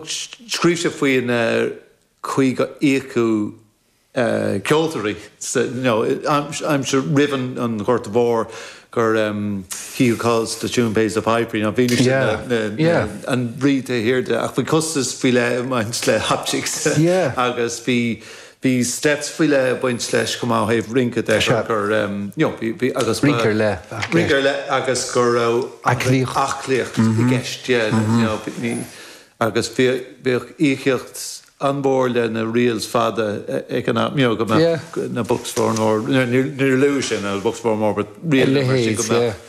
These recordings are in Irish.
Scríobh sé faoin chaoi gur íocadh ceoltóirí san aimsir roimh an Ghorta Mhór, gur he who calls the tune pays the piper, you know, bhí mise ina an rí taobh thiar de ach bhí costas faoi leith ag baint le hop jigs agus bhí, Bhí stádas faoi leith ag baint leis chomh maith ó thaobh rince de, gur, you know, agus. Rince ar leith. Rince ar leith agus go raibh. Aclaíocht. Aclaíocht i gceist, yeah, you know, ní, agus bhíodh íocaíocht an-mhór le na reels fada ag an am, you know, go mbeadh na Bucks of Oranmore, níor luaigh sé na Bucks of Oranmore but reels mar sin go mbeadh.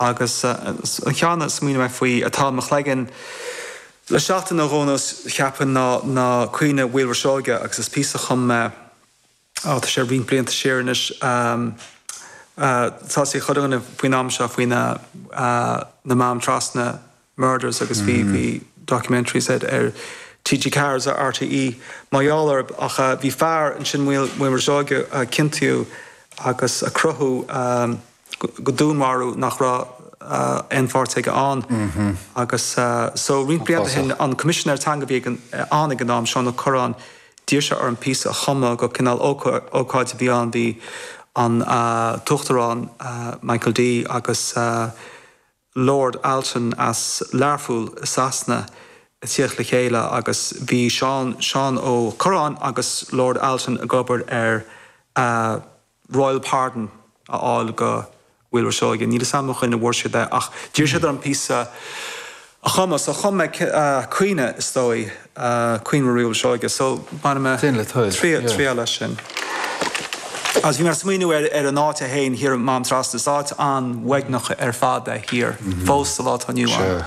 Agus ceann a smaoinigh mé faoi atá i mo chloigeann le seachtain nó dhó cheapfainn ná Caoineadh Mhaolra Seoighe agus is píosa a chum mé, á tá sé roinnt blianta siar anois, tá 'fhios ag chuile dhuine faoin am seo faoi na Mám Trasna Murders agus bhí documentaries a'd ar TG Ceathair agus ar RTÉ mar gheall orthu ach bhí fear ansin Maolra Seoighe a ciontaíodh agus a crochadh go dúnmharú nach raibh aon pháirt aige ann agus so roinnt blianta ó shin an Coimisinéir Teanga a bhí againn ag an am Seán Ó Cuirreáin d'iarr sé orm píosa a chumadh go cineál ócáid a bhí ann bhí an tUachtarán Michael D agus Lord Alton as Learpholl i Sasana ag tíocht le chéile agus bhí Seán Seán Ó Cuirreáin agus Lord Alton ag obair ar a Royal Pardon a fháil do Mhaolra Seoighe. Níl 'fhios a'm cén chaoi a bhfuair siad é ach d'iarr siad orm píosa a chumadh so chum mé caoineadh is dóigh. Caoineadh Mhaolra Seoighe so bhain mé triail as sin agus bhí mé ag smaoineamh ar ar an áit é féin thiar Mám Trasna, is áit an-uaigneach ar fad é thiar fós sa lá atá inniu ann.